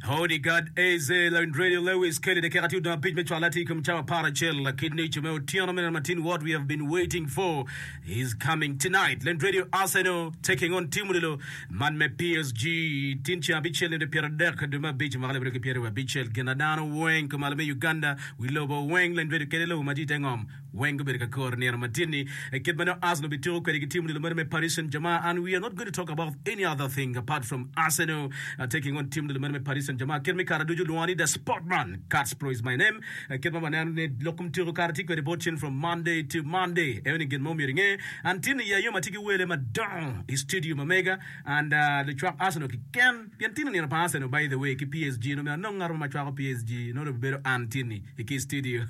Howdy God AZ, Lawin Radio Lewis Kelly, dakika tye odong abic me cwal atir kom cawa apar acel lakit nico me otyeno me neno matin what we have been waiting for is coming tonight. Lawin Radio Arsenal taking on team lilo man me PSG tin ceng abicel nende pyero adek dwe me abic mwaka lebedo ki pyero abicel gin adano weng kumalo me Uganda wi lobo weng Lawin Radio kede lobo madit engom Weng gubedo ka kor nino madit-ni, kit ma nongo Arsenal bitiko kwede ki tim-ni lomeno me Paris Saint-Germain. And we are not going to talk about any other thing apart from Arsenal taking on tim-ni lomeno me Paris Saint-Germain. Kit ma i kare ducu olwonga ni The Sportman, Kacpro is my name. Kit ma waneno ni lok kom tyeko kare tye kwede bot cen from Monday to Monday. Eno ni gin ma omyero inge, and tin-ni i ayom atye ki wele madongo i studio ma mega and lucwak Arsenal kiken. Gin timo nino pa Arsenal by the way ki PSG nongo myero anong ngat mo ma cwako PSG nongo dong bibedo an tini i ki studio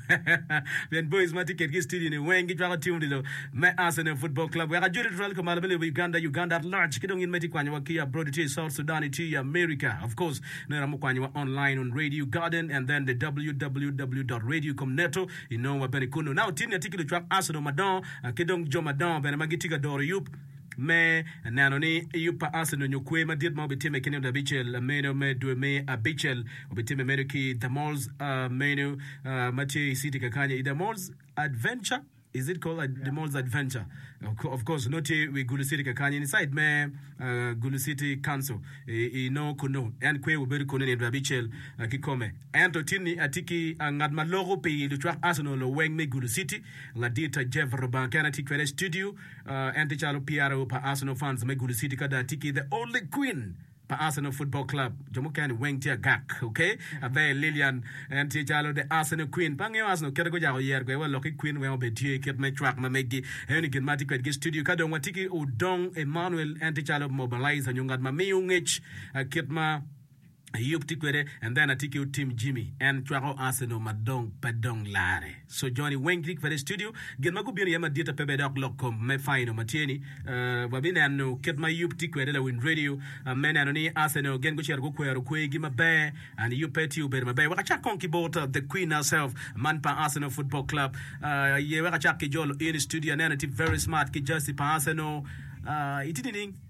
pien boys ma tye kit ki studio ni weng gi cwako team odilo me Arsenal football club wek ajoli tutwal ka malo me lobo Uganda Uganda at large ki dong in ma itye kwanyo wa ki abroad itye i South Sudan itye i America of course nongo iramo kwanyo wa online on radio garden and then the www.radiocomneto inongo wa bene kunu now tini atye ki lucwak Arsenal madongo ki dong jo madongo bene ma gitye ka doro yub me neno ni yub pa Asa ononyo kwer madit ma obitimme ki nino abicel meno me dwe me abicel. Obitimme meno ki i The Moles uh, meno uh, ma tye i city kakanya i The Moles Adventure is it called ad, The Moles Adventure of co- of course no tye wi Gulu City kakanya inside me uh, Gulu City Council i, i no kuno en kwer obedo kuno nino dwe abicel uh, ki kome ento tinni atye ki uh, ngat ma loko pi lucwak Arsenal loweng me Gulu City ladit uh, Jeff Rubanga kene tye kwede i studio En tye calo PRO pa Arsenal fans me Gulu City ka dong atye ki the only queen pa Arsenal football club. Jo mukene weng tye agak. Ok. Aber Lilian en tye calo the Arsenal queen. Pe angeyo Arsenal kite gujako yero kwede wa lok ki queen weng obed tye kit me cwak ma megi. Eni gin ma atye kwedgi i studio. Ka dong watye ki Odong Emmanuel en tye calo mobilizer nyo ngat ma miyo ngec kit ma Ayub tye kwede and then atye ki otim Jimmy en cwako Arsenal ma dong pe dong lare so joni weng tye kwede i studio gin ma gubino iye madit ape bene dok lok kom me final ma tye ni uh, wa bineno kit ma Ayub tye kwede lawiny radio uh, me neno ni Arsenal gin gucito gukwero kwegi maber and Ayub pe tye obedo maber wek acak kong ki bot uh, the queen herself man pa Arsenal football club uh, aye wek acak ki jolo in i studio aneno tye very smart ki jersey pa Arsenal uh, itye nining?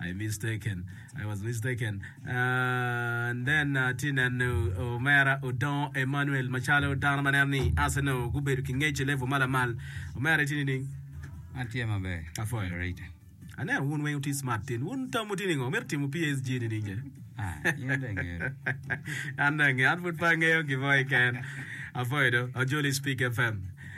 I mistaken, I was mistaken, and then atye neno omera Odong Emmanuel macalo dano ma neno ni Arsenal gubedo ki ngec i level ma lamal. Omera itye nining? An tye maber. Apwoyo. Rita. Aneno wun weng wuti smart tin. Wun tamu tye ningo? Mito timo PSG nining ce? Ah, in dong ingero. An dong angeyo, an pud pe angeyo gin mo keken. Apwoyo do, Ajoli Speak FM.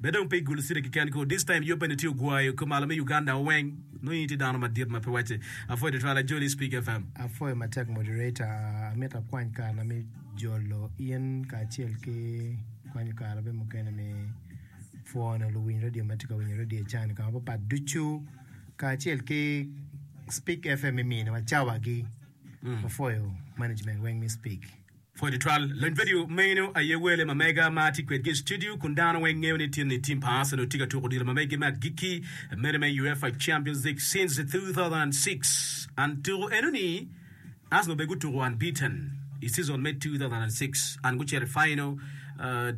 Be dong pe igulu cire keken ko. This time yoo peni tye ogwayo ko malo me Uganda wa weng. Nongo in itye dano madit ma pe wacce. Apwoyo tutwal ajoli Speak FM. Apwoyo matek moderator, amito akwany kare na me jolo in kacel ki kwanyo kare bene mukene me pwono luwiny radio matye ka winyo radio can i kama papat ducu kacel ki Speak FM iminiwa cawa gi. Wapwoyo management weng me Speak. Pwod itwal lony vidio meno aye wele ma mega ma atye kwedgi i studio kun dano weng ngeyo ni tin ni tim pa Arsenal tye ka tuko odilo ma megi me agikki mene me UEFA Champions League since 2006 and tuko eno ni Arsenal bene gutuko unbeaten i season me 2006 and gucito i final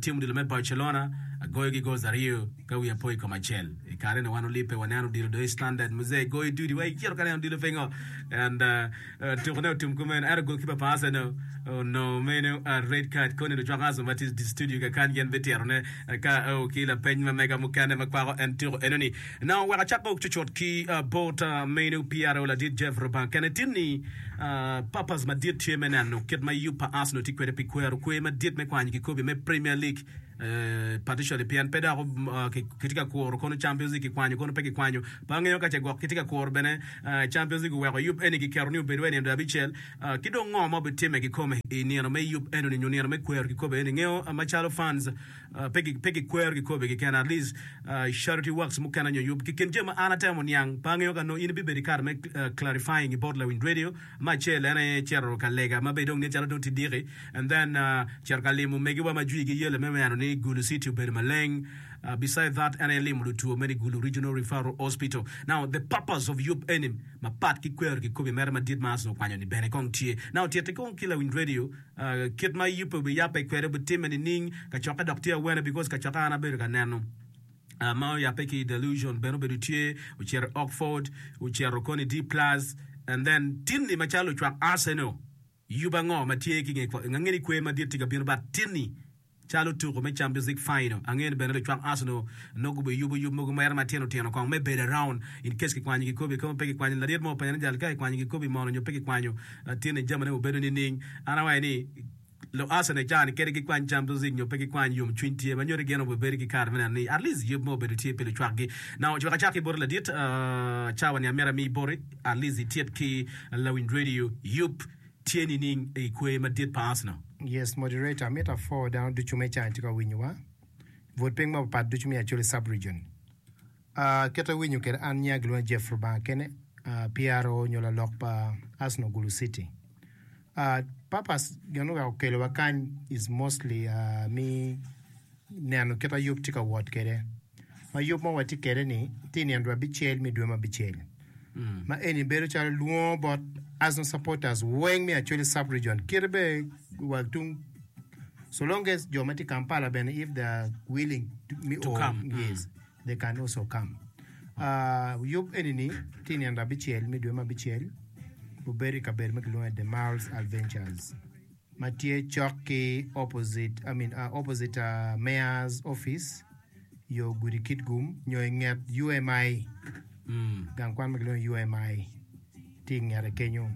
tim odilo me Barcelona agoyo gi goals aryo ka wiya po i kom acel i kare ni wan olibbe waneno odilo do i standard muzee goyo dudi wa icito ka neno odilo pingo and Tuku ne otum kumeno ento golkipa pa Arsenal onongo meno red card koni lucwak Arsenal ma tye studio kakany gin bitito ne ka o ki lapeny ma mega mukene ma kwako en tuku enoni na oweko acak ok cucut ki bot meno PRO ladit Jeff Rubang kene tin ni purpose madit tye me neno kit ma yub pa Arsenal tye kwede pi kwero kwe madit me kwanyo kikobi me Premier League partially pien pe dok kitye ka kuro kono Champions League kikwanyo kono pe kikwanyo Pe angeyo ka ce gwok kitye ka kuro bene Champions League oweko yub eni kiketo ni obed wa i nino dwe abicel, ki dong ngo ma obitimme kikome i nino me yub enuni nyo nino me kwero kikopo eni. Ingeyo macalo fans pe gikwero kikopo keken, at least charity works mukene nyo yub. Ki kin jami ma an atemo niang, pe angeyo ka nongo in ibibedo i kare me clarifying i bot Lawiny Radio. Me acel en aye cito ka lega ma bene dong nen calo dong tye diki and then cito ka limo omegiwa ma jwigi yelo me neno ni Gulu city obedo maleng beside that en aye limo lutwo me ni Gulu Regional Referral Hospital now the purpose of yub eni mapat ki kwero kikobi mere madit ma Asna okwanyo ni bene kong tye now titi kong ki lawiny radio kit ma yubbe obiyape kwede obitimme nining kacokke dok tye awene because kacokke an abedo ka neno ma oyape ki Delusion bene obedo tye, ocito i Oxford, ocito kono i D Plus and then Tinni macalo lucwak Arsenal yubo ango ma tye ki nge kwo? Ange ni kwer madit tye ka bino but Tinni calo tuko me Champions League final ange ni bene lucwak Arsenal nongo gube yubo yub mogo mere matino tino kong me bedo around in case kikwanyo kikobi kong pe kikwanyo laryet mo openyo ni jal ka kikwanyo kikobi mono nyo pe kikwanyo Tinni jami ne obedo nining? An awaco ni Luasen e caa ni kadi gi kwany jam music nyo pe gi kwany yom cwiny tye ma nyodi gin obebedo ki kare me neno ni at least yub mo obedo tye pe lucwak gi na ocwek acak ki boti ladit caa wa ni amyero ami boti at least i tyet ki lawiny radio yub tye nining i kwer madit pa Arsenal. Yes moderator amito afo dano ducu me caa ni tye ka winyo wa vote piny mapapat ducu me acholi sub region. Aa, kit awinyo kede an nya gilwonge Jeff Rubanga kene, aa, PRO nyo lalok pa Arsenal Gulu City. Aa, purpose gin oweko okelowa kany is mostly aa, mi neno kit ayub tye ka wot kede. Ma yub ma watye kede ni tye i nino dwa bicel mi dwe ma bicel. Ma eni bedo calo lwongo bot Arsenal supporters weng me Acholi Sub Region kite bene wa tung so long as jo ma tye i Kampala bene if they are willing to, mi To o, come, mm. yes. They can also come. Uh, yub eni ni ti nino abicel me dwe me abicel obedo i kabedo ma kilwongo The Miles Adventures ma tye cok ki opposite, I mean, uh, opposite uh, Mayor's Office yo gudi Kitgum nyo i nget UMI, mm. gang kwan ma kilwongo UMI. Tye i ngete kenyo.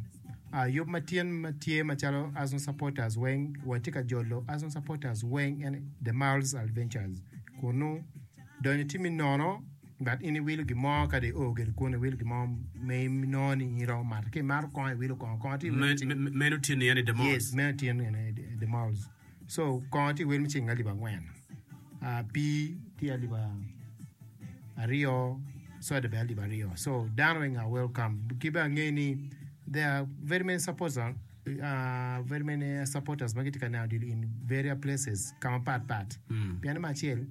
Ah, yub ma tyen ma tye macalo Arsenal supporters weng, watye ka jolo Arsenal supporters weng en The Mall's Adventures kunnu. Donyo timmi nono, but in iwilo gin mo kadi i oo gire kunnu iwilo gin mo ma inongo ni in iromo mato. Ka imato kongo iwilo kongo, kongo tye iwilo Me- cing. me- meno tyen iye ni The Mall's. Yes, meno tyen iye ni The Mall's. So kongo tye wer me ceng alip angwen, pii tye alip aryo, soda bene alip aryo. So dano weng are welcome. Ki bene ange ni there are very many supporters, very many supporters ma gitye ka neno odilo in various places, ka mapat pat. Pienni me acel,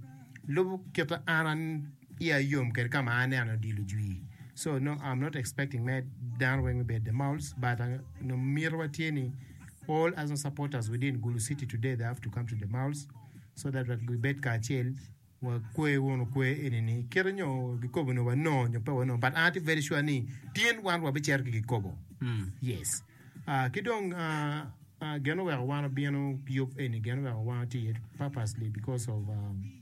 lubo kit ma an iya yom kede kama aneno odilo jwi so nongo am not expecting me dano weng me bedo the mouls but nongo mito wa tye ni all as long supporters within gulu city today they have to come to the mouls so that wat gibed kacel wa kwe wunu kwe eni ni kite nyo gikobo nyo wanongo nyo pe wanongo but an atye very sure ni tin wan wa bicero ki gikobo yes Ah, ki dong ah, ah, gin oweko wan obino yub eni gin oweko wan tye iye purposely because of um,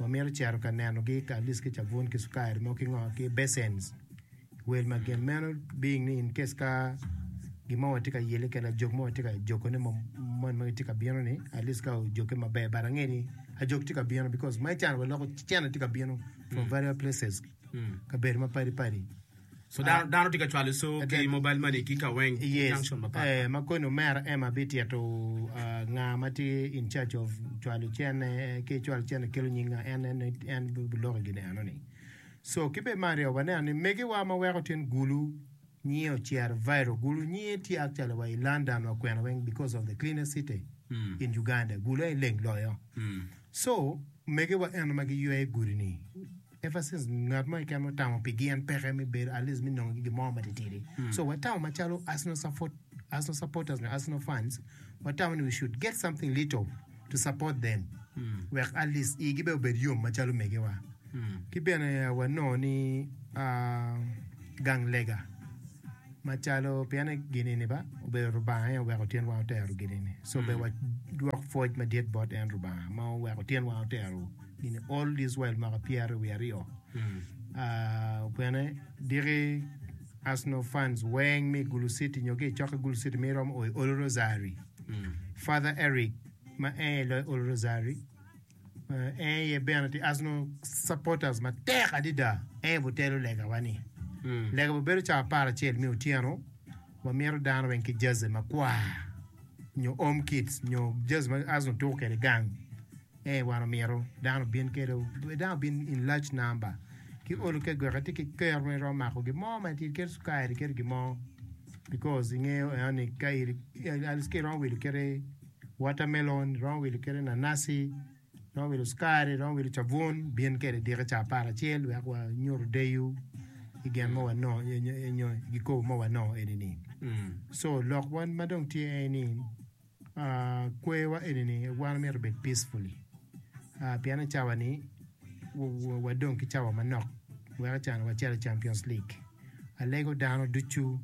Wamito cito ka nenogi ka alis ki cabun ki cukari mo ki ngo ki basins i wel ma gin meno being ni in case ka gin mo watye ka yele kede ajog mo watye ka jogo ne mon magi tye ka bino ni at least ka ojoge maber but ange ni ajog tye ka bino because ma i can wa loko cene tye ka bino from various places kabedo mapadi padi So ah. dano, dano tye ka cwalo so Adet. ki mobile money ki ka weng yes. junction mapatpat. Eh, ma koni omera Emma bitito uh, nga ma tye in charge of cwalo cene ki cwalo cene kelo nying nga en en en biloko gini eno ni. So ki be Mario waneno ni megiwa ma weko tin gulu nyie ocero viral gulu nyie tye actually wa i London wa kwena weng because of the cleanest city Mm. in Uganda gulu en leng loyo. Mm. So megiwa eno ma giywe gudi ni Emphasis, Ngat mo keken ma otamo pi gin peke me bedo at least me nongo ki gin mo matitidi. So watamo macalo Arsenal support, Arsenal supporters nyo Arsenal fans, watamo ni we should get something little to support them. Wek at least igi bene obed yom macalo megiwa. Ki bene ah, wanongo ni ah, gang lega macalo pien en gin-ni ba obedo Lubanga aye oweko tyenwa otero gin-ni. So bene wadwok pwoc madit bot en Lubanga ma oweko tyenwa otero. In the Old Israel maka pyera wiye aryo. Bene diki Arsenal fans weng mi Gulu City nyo ki cokke Gulu City mi rom oi Olu Rosary. Father Eric ma en aye loyo Olu Rosary en aye bene ti Arsenal supporters matek adida en aye butelo legawa ni. Lega bubedo cawa apar acel mi otyeno wamyero dano weng ki jersey makwar nyo home kits nyo jersey ma Arsenal tuko kwede gang. Ee, wan omyero dano obin kede dano obin in large number ki olo ke gweka tye ki kero ma iromo mako gin mo ma itye keto cukari keto gin mo because ingeyo eno ni ka iri at least ka iromo wilo kede watermelon iromo wilo kede nanasi iromo wilo cukari iromo wilo cabun bin kede diki ca apar acel wek wa nyutu deyo i gin ma wanongo nyo nyo nyo gikobo ma wanongo eni ni so lok wan ma dong tye en ni Kwewa enini wan omyero obed peacefully pien ni cawa ni wadong ki cawa manok weko can wacito i Champions League. Alego dano ducu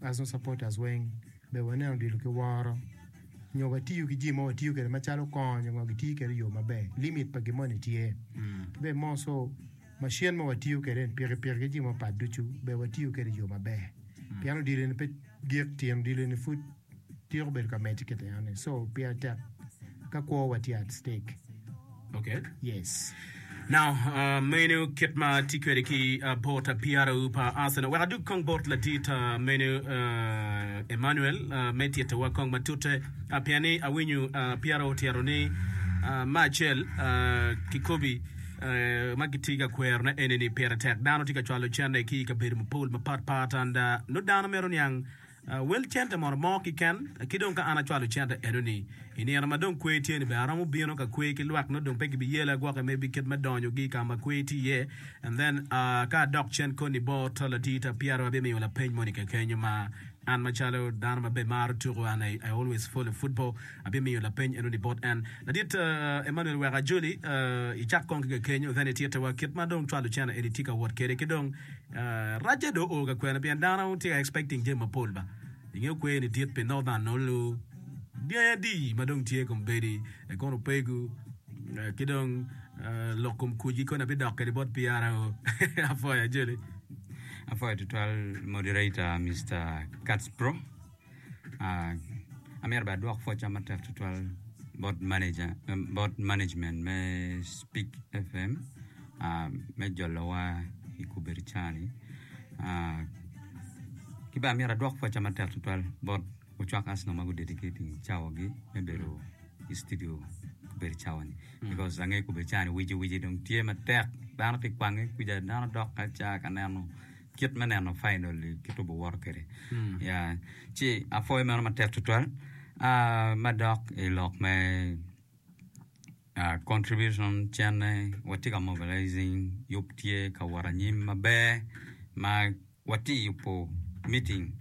Arsenal supporters weng ber wanen odilo ki woro nyo watiyo ki jami ma watiyo kwede macalo kony nyo ngo gitiyo kwede i yo maber limit pa gin moni tye ki bene more so macin ma watiyo kwede ni pikipiki ki jami mapatpat ducu ber watiyo kwede i yo maber pien odilo eni pe gik tyen odilo eni pud Tyeko bedo ka medde kit yam ni so pire tek ka kwo wa tye at stake. Okay. Yes. Now, uh, menu kit ma ti kwede ki uh, bot apiaro pa Arsenal. Wek adug kong bot ladit uh, menu uh, Emmanuel uh, me tittewa kong matute uh, pien ni awinyo uh, piaro otyero ni uh, ma acel uh, kikobi uh, ma giti ka kwerone eni ni pire tek dano ti ka cwalo cente ki i kabedo mapol mapat pat and uh, nut dano mito niang Wel cente mono mo kiken, ki dong ka an acwalo cente eno-ni, i nino ma dong kwer tye-ni bene aromo bino ka kwer ki lwak nongo dong pe gibiyela gwoke me bikit me donyogi ka ma kwer tye iye. And then, ka adok cen koni bor to latii ta pyero abimiyo lapeny moni kekenyo ma an macalo dano ma bene maro tuku and I always follow football, Abimiyo lapeny enoni bot en. Ladit Emmanuel wek ajoli i cak kong ki kekenyo then i tyete wa kit ma dong cwalo cene eni tye ka wot kede ki dong racce dong oo ka kwene pien dano tye ka expecting jami mapol ba ingeyo kwer eni dit pi northern nolu dyangi adi ma dong tye kom bedi ekono pegu ki dong lok kom kuc gi koni abi dok kede bot PRO apwoyo ajoli. Apwoyo tutwal moderator Mister Kats bro. Amyero bene adwok pwocca matek tutwal bot maneja, bot management me Speak FM me jolowa i kubedi cani. Ki bene amyero adwok pwocca matek tutwal bot ocwak Arsenal ma gudedicating cawagi me bedo i studio kubedi cawani. Because angeyo kubedi cani wici wici dong tye matek dano pi kwange kwija dano dok ka ca ka neno kit me neno fainol i kit tubo woto kwede. Ya, ci apwoyo meno matek tutwal. Ah, madok i lok me ah, contribution, cene, watye ka mobilizing, yub tye ka wot anyim maber, ma watye yubo meeting,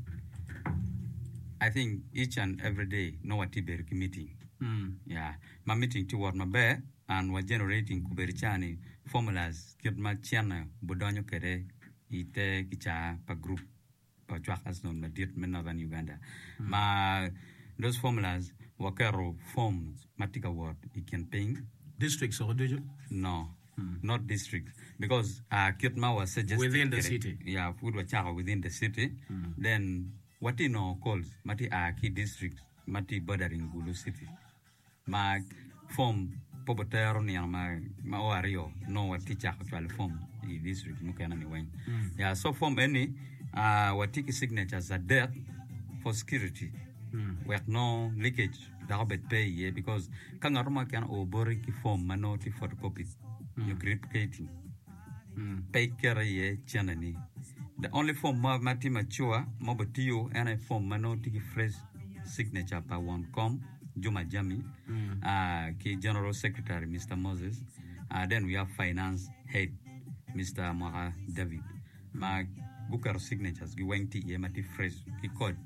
I think each and every day nongo watye bedo ki meeting, ya, ma meeting tye wot maber, and wa generating kubedi ca ni formulas kit ma cene budonyo kede i te kicaa pa group pa ocwak asnun madit me northern Uganda ma those formulas wa keto forms ma tye ka wot i kin piny Districts woko ducu? no not district because ah kit ma wa suggested Within the kede- city. yeah pud wa cako within the city then wa tye nongo calls ma tye a ki district ma tye bordering Gulu city ma form pe obitero nino ma ma o aryo nongo watye cako cwalo form i district mukene ni weng ya so form eni ah, watye ki signatures adek for security wek nongo leakage dok obed pe iye because ka ngat mo keken oo boti ki form ma nongo tye photocopy nyo gripcating pe ikete iye ceneni the only form mo ma tye mature ma obitiyo en aye form ma nongo tye ki fresh signature pa won kom Juma Jami, ah, ki General Secretary Mister Moses, ah, then we have Finance Head Mister Mwaka David ma guketo signatures gi weng tye iye ma tye fresh ki code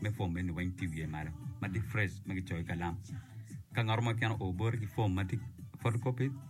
me form eni weng tye iwiye malo ma tye fresh ma gicoyo ki kalam. Ka ngat mo keken oo boti ki form ma tye photocopy,